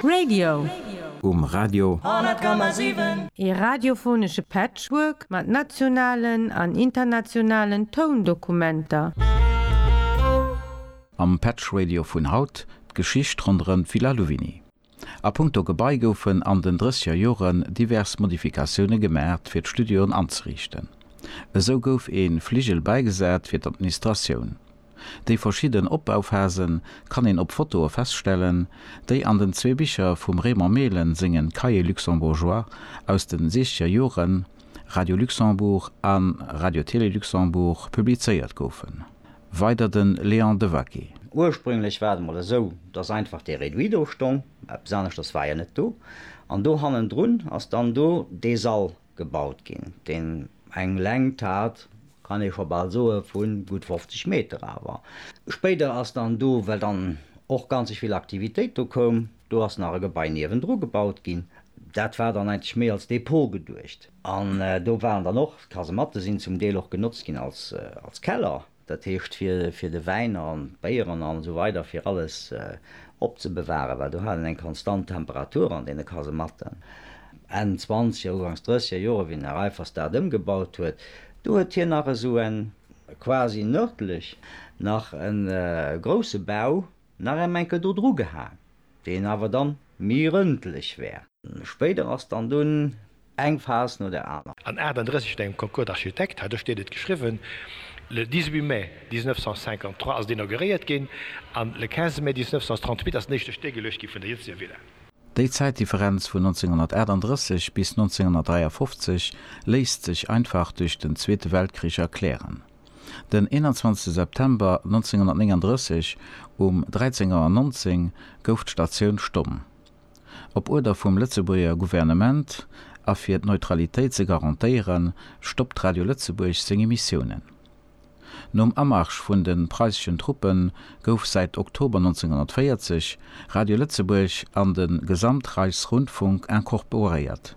Radio. Um Radio. 100,7. Ee radiophonesche Patchwork mat nationalen an internationalen Toundokumenter. Am Patchradio vun haut, d'Geschicht ronderëm d'Villa Louvigny. A punkto Gebai goufen an den drësseger Joren divers Modifikatioune gemaacht fir d'Studioen anzeriichten. Esou gouf ee Fligel bäigesat fir d'Administratioun. Déi verschidden Opbauphasen kann een op Fotoe feststellen, déi an den zwee Bicher vum Raymond Mehlen sengen Cahiers luxembourgeois aus den siechzeger Joren, Radio Luxembourg an Radio-Télé Luxembourg, publizéiert goufen. Weider den Léon Devaquet. Ursprünglech war et emol esou, dass einfach dee Réduit do stong, eppes aneschters war jo net do, an do hannendrun ass dann do dee Sall gebaut ginn, deen eng Längt hat, kann ee scho bal soe vu gutt 50 Meter awer spéider ass dann do, well dann och ganzeg vill Aktivitéit do koum, do ass nach e Gebai niewendru gebaut ginn, dat war dann eigentlech méi als Depot geduecht an do waren dann och Kasematte sinn zum Deel och genotzt ginn als Keller. Dat heescht fir de Wäin an d'Béieren an esou weider, fir alles opzebewaren, well do hat een eng konstant Temperatur an deene Kasematten. Enn zwanzeger, ugangs drësseger Jore wéi den Här Reiffers dat ëmgebaut huet, do huet hien nach esou en quasi nërdlech nach e grousse Bau nach ém enke do dru gehaen, dé en awer dann mi rëndlech wär. Spéider ass dann dunn eng Phas no der aner. An 38 vun engem Concours d'architectes, hat ech dir net geschriwwen, le 18 mai 1953 ass et inauguréiert ginn, an le 15 mai 1938 ass den éischte Stéck geluecht gi vun der jëtzeger Villa. Déi Zäitdifferenz vun 1938 bis 1953 léisst sech einfach duerch den Zweete Weltkrich erklären. Den 21 September 1939 um 13 Auer 19 gouf d'Statioun stomm. Op Uerder vum Lëtzebuerger Gouvernement a fir d'Neutralitéit ze garantéieren, stoppt Radio Lëtzebuerg seng Emissiounen. Nom Amarsch vun de preisseschen Truppe gouf säit Oktober 1940 Radio Lëtzebuerg an de Gesamtreichsrundfunk incorporéiert.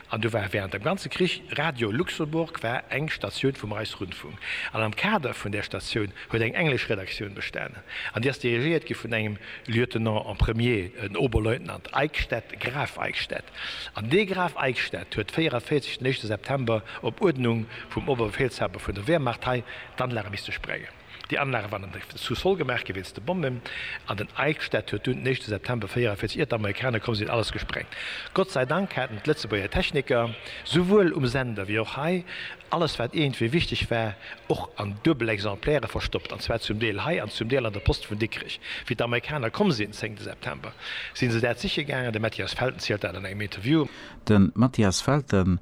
An do war während dem ganze Krich, Radio Luxemburg war eng Statioun vum Reichsrundfunk, an am Kader vun där Statioun huet eng englesch Redaktioun bestanen, an déi ass dirigéiert gi vun engem Lieutenant en premier, en Oberleutnant Eickstedt, Graf Eickstedt. An dee Graf Eickstedt huet 44 den éischte September op Uerdnung vum Oberbefehlshaber vun der Wehrmacht hei d'Anlage misste sprengen. Déi Anlage waren an der Sous-sol gemaach gi wéinst de Bommen, an den Eichstätt huet dunn den éischte September 44, ier d'Amerikaner komm sinn, alles gesprengt. Gott sei Dank haten d'Lëtzebuerger Techniker, souwuel um Sender wéi och hei, alles wat iergendwéi wichteg war, och an duebel Exemplaire verstoppt, an zwar zum Deel hei an zum Deel an der Post vun Dikrech. Wéi d'Amerikaner komm sinn, zéngte September, si se dat siche gaangen, de Mathias Felten zielt dat an engem Interview. De Mathias Felten.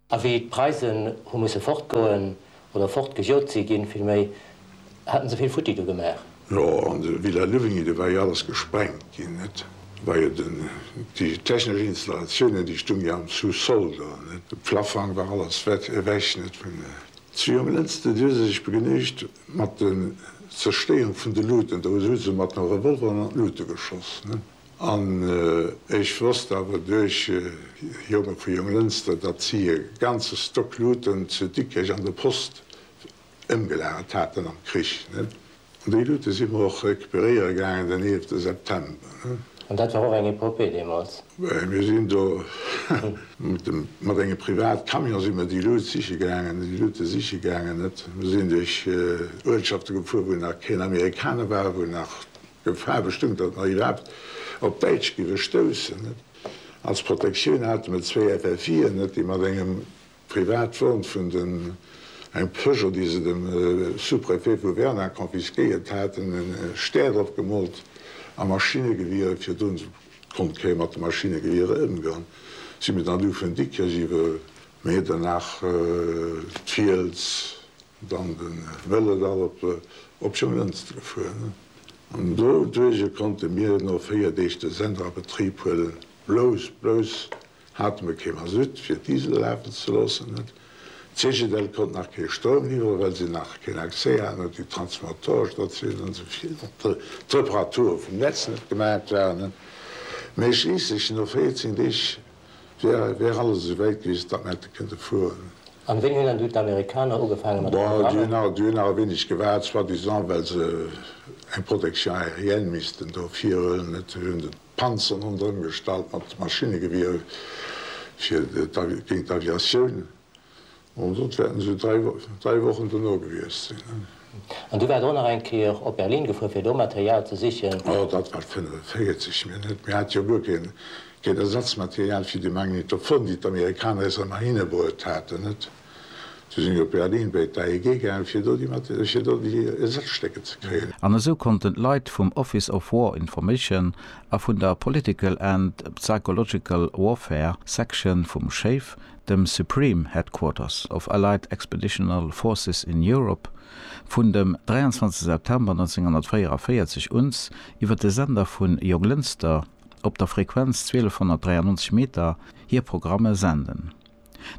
A wéi d'Preisen hu musse fortgoen, oder fortgejot si ginn villméi, haten se vill futti do gemaach. Jo, an de Villa Luvigny, do war jo alles gesprengt ginn, net? Do war jo den, déi technesch Installatiounen, déi stung jo am Sous-sol do, net? De Plafang war alles wett, ewech, net? Vun. Si um Lënster, déi hu se sech begnügt mat den Zerstéierung vun de Luten, do hu se mat de Revolveren an d'Lute geschoss, net? An ech wosst awer duerch Jonge vu Jonglënster, datt si e ganze Stock Luuten zu Dikrech an der Post ëmgelagert haten am Krich. An déi Luute si mer och recuperéiere gaangen den 11 September. An dat war och eng Epopée deemools. Mir sinn do mat engem Privatcamion si mer déi Luut siche gaangen, déi Luute siche gaangen. Mir sinn duerch Uertschafte gefuer, wou nach keen Amerikaner war, wou nach Gefahr bestoung, datt mer iwwerhaapt op Däitsch géiwe stoussen. Als Protektioun hate mer zwéi FFIen, déi mat engem Privatwon vun den, engem Peugeot, déi se dem Sous-préfet vu Werner confisquéiert haten, e Stär drop gemoolt a Maschinegewiere fir drun. Konnt kee mat de Maschinegewiere ëmgoen. Si mir dann du vun Dikrech iwwer Medernach, d'Fiels. dann de Wëllerdall op op Jonglënster fueren an do duerje konnte mir no 4 Deeg de Sender a Betrib huelen. Blouss blouss hate mir kee Masutt fir d'Disel lafen ze loossen. D'Cegedel konnt nach kee Stroum liwwere well si nach keen Accès haten un déi Transformatorestatiounen an souvill och d'Reparature vum Netz net gemaacht waren. Mee schliisslech no 14 Deeg Wär alles esou wäit gewiescht, datt mer hätte kënne fueren. An wéini hunn dann du d'Amerikaner ugefaange mat de Programmer? Bon, déi hunn nach e weéneg gewaart, soi-disant well se eng Protection aérienne missten do virhuelen. Et hunn se d'Panzeren ronderëm gestallt mat Maschinnegewierer fir géint d'Aviatioun. An dot wäerten se dräi Wochen dono gewiescht sinn. An du waars och nach eng Kéier op Berlin gefuer fir do Material ze sichen? Oh, dat war 45 Minutt. Mir hate jo guer keen Ersatzmaterial fir déi Magnetophon, déi d'Amerikaner eis ëmmer hinebruet haten, net? Du sinn ech op Berlin béi d'AEG gaangen, fir do déi Ersazstécker ze kréien. An esou konnten d'Leit vum Office of War Information a vun der Political and Psychological Warfare Section vum SHAEF dem Supreme Headquarters of Allied Expeditional Forces in Europe, vun dem 23 September 1944 uns iwwer de Sender vu Joglënster op der Frequenz 1293 Meter hir Programme senden.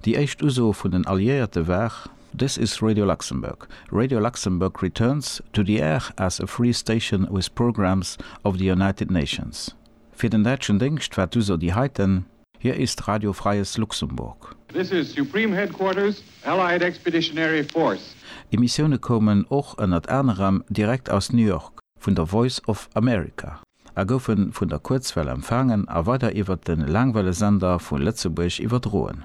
Déi éischt Uso vun den Alliéierte war. This is Radio Luxembourg. Radio Luxembourg returns to the air as a free station with programmes of the United Nations. Fir den däitschen Déngscht war d'Uso déi heiten. Hier ist Radio Freies Luxemburg. This is Supreme Headquarters, Allied Expeditionary Force. Emissioune koumen och ënnert anerem direkt aus New York vun der Voice of America a goufe vun der Kuerzwell empfaangen a weider iwwert de Laangwellesender vu Lëtzebuerg iwwerdroen.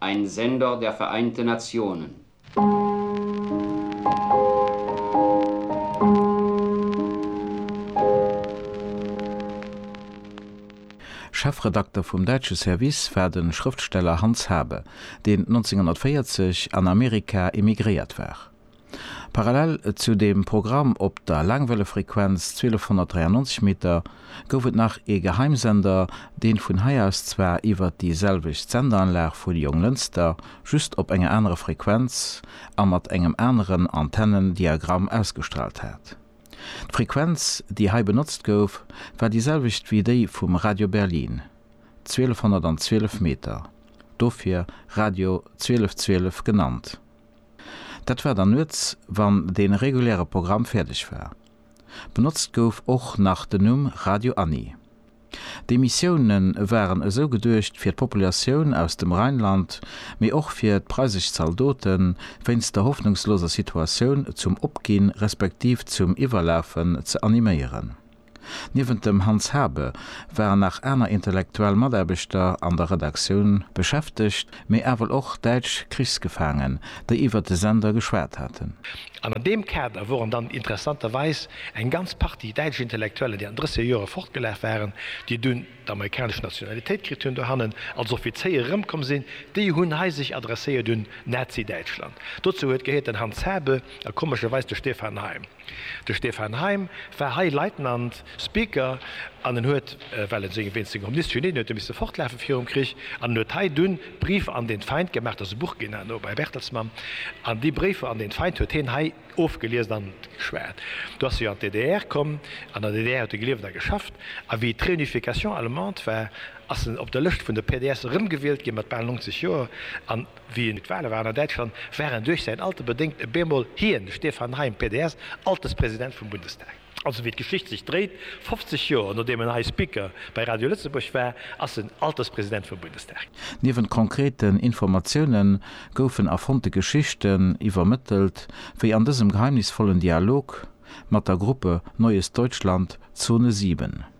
Ein Sender der Vereinten Nationen. Chefredakter vum däitsche Service war de Schrëftsteller Hans Habe, deen 1940 an Amerika emigréiert war. Parallel zu dem Programm op der Laangwellefrequenz 1293 Meter gouf et nach ee Geheimsender, deen vun hei aus zwar iwwert déi selwecht Sendeanlag vu Jonglënster, just op enger anerer Frequenz a mat engem aneren Antennendiagramm ausgestraalt hat. D'Frequenz déi hei benotzt gouf war déi selwecht wéi déi vum Radio Berlin, 1212 Meter, dofir Radio 1212 genannt. Dat war dann nuets, wann dee reguläre Programm fäerdeg war. Benotzt gouf och nach den Numm Radio Anni. D'Emissioune waren esou geduecht fir d'Populatioun aus dem Rheinland, mee och fir d'preisesch Zaldoten, wéinst der hoffnungsloser Situatioun zum Opginn respektiv zum Iwwerlafen ze animéieren. Niewent dem Hans Habe waren nach aner intellektuell Mataarbechter an der Redaktioun beschäftegt, mee ewell och däitsch Krichsgefaangen, déi iwwert de Sender geschwat haten. An an deem Kader woren dann interessanterweis eng ganz Partie däitsch Intellektuellen, déi an drësser Jore fortgelaf waren, déi dunn d'amerikanesch Nationalitéit kritt hunn, dohannen als Offizéier erëmkomm sinn, déi hunn hei sech adresséiert un Nazi-Däitschland. Dozou huet gehéiert den Hans Habe a komescherweis de Stefan Heym. De Stefan Heym war hei Leitnant, Speaker, an en huet, well en seng, wéinst senger Omniscience, Genie, en huet e misse fortlafe virum Krich, an en huet hei dunn Briefe an den Feind gemaach, dat ass e Buch ginn herno bei Bertelsmann, an déi Briefe an den Feind huet hien hei ofgeliest an geschwat. Du ass hie an d'DDR komm, an der DDR huet e gelieft a geschafft, a wéi d'Réunification allemande war, ass en op der Lëscht vun de PDS erëmgewielt ginn, mat bal 90 Joer, an. Wéi et d'Wahle waren an Däitschland, war en duerch säin Alter bedéngt e bemol hien, de Stefan Heym, PDS, Alterspresident vum Bundestag. Also wéi d'Geschicht sech dréit, 50 Joer nodeem en hei Speaker bei Radio Lëtzebuerg war, ass en Alterspresident vum Bundestag. Niewent konkreten Informatioune goufen erfonnte Geschichten iwwermëttelt, wéi an dësem geheimnisvollen Dialog mat der Gruppe Neues Deutschland, Zone 7.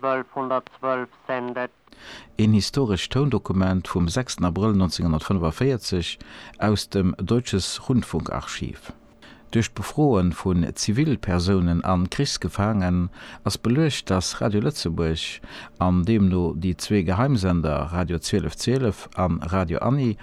1212 sen det. Een historescht Toundokument vum 6 Abrëll 1945 aus dem Deutsches Rundfunkarchiv. Duerch d'Befroe vun Zivilpersounen an Krichsgefaangen ass beluecht, datt Radio Lëtzebuerg, an deemno déi zwee Geheimsender Radio 1212 an Radio Annie,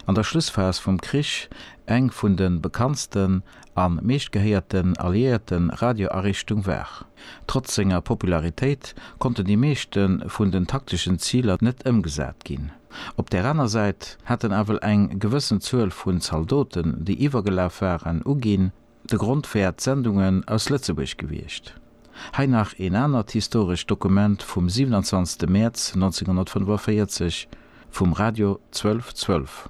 an der Schlussphas vum Krich eng vun de bekanntsten an meeschtgehéierten alliéierte Radioariichtung war. Trotz senger Popularitéit konnten déi meeschte vun den takteschen Ziler net ëmgesat ginn. Op där aner Säit hat en ewell eng gewëssen Zuel vun Zaldoten, déi iwwergelaf waren, uginn. De Grond wär d'Sendungen aus Lëtzebuerg gewiescht. Hei nach een anert historescht Dokument vum 27 Mäerz 1945 vum Radio 1212.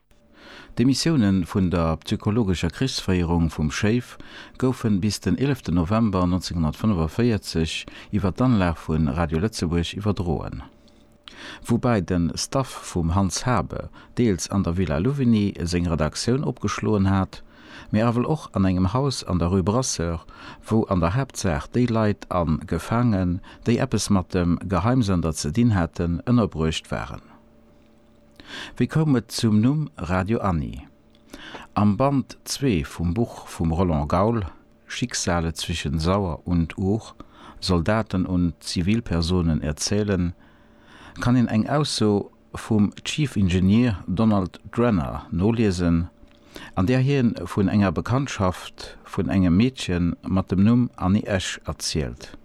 D'Demissioune vun der psychologescher Krichsféierung vum Schéif goufe bis den 11 November 1945 iwwer d'Anlag vu Radio Lëtzebuerg iwwerdroen. Woubäi de Staff vum Hans Habe deels an der Villa Louvigny seng Redaktioun opgeschloen hat, mee awel och an engem Haus an der Rue Brasseur, wou an der Haaptsaach déi Leit a Gefaangen, déi eppes mat dem Geheimsender ze dinn haten, ënnerbruecht waren. Wéi koum et zum Numm Radio Anni? Am Band zwee vum Buch vum Roland Gaul, Schicksale zwischen Sauer und Our, Soldaten und Zivilpersonen erzählen, kann een eng Ausso vum Chief Engineer Donald Drenner noliesen, an där hie vun enger Bekanntschaft vun engem Meedche mat dem Numm Anni Esch erzielt.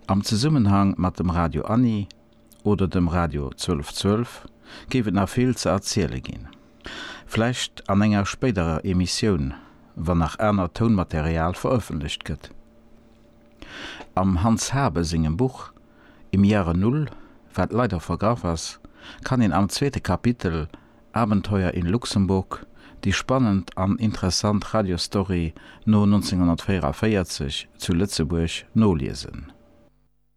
Am Zesummenhang mat dem Radio Anni. oder dem Radio 1212 géif et nach vill ze erziele ginn. Vläicht an enger spéiderer Emissioun, wann nach anert Tounmaterial verëffentlecht gëtt. Am Hans Habe sengem Buch Im Jahre Null, wat leider vergraff ass, kann een am zweete Kapitel Abenteuer in Luxemburg déi spannend an interessant Radiostory no 1944 zu Lëtzebuerg noliesen.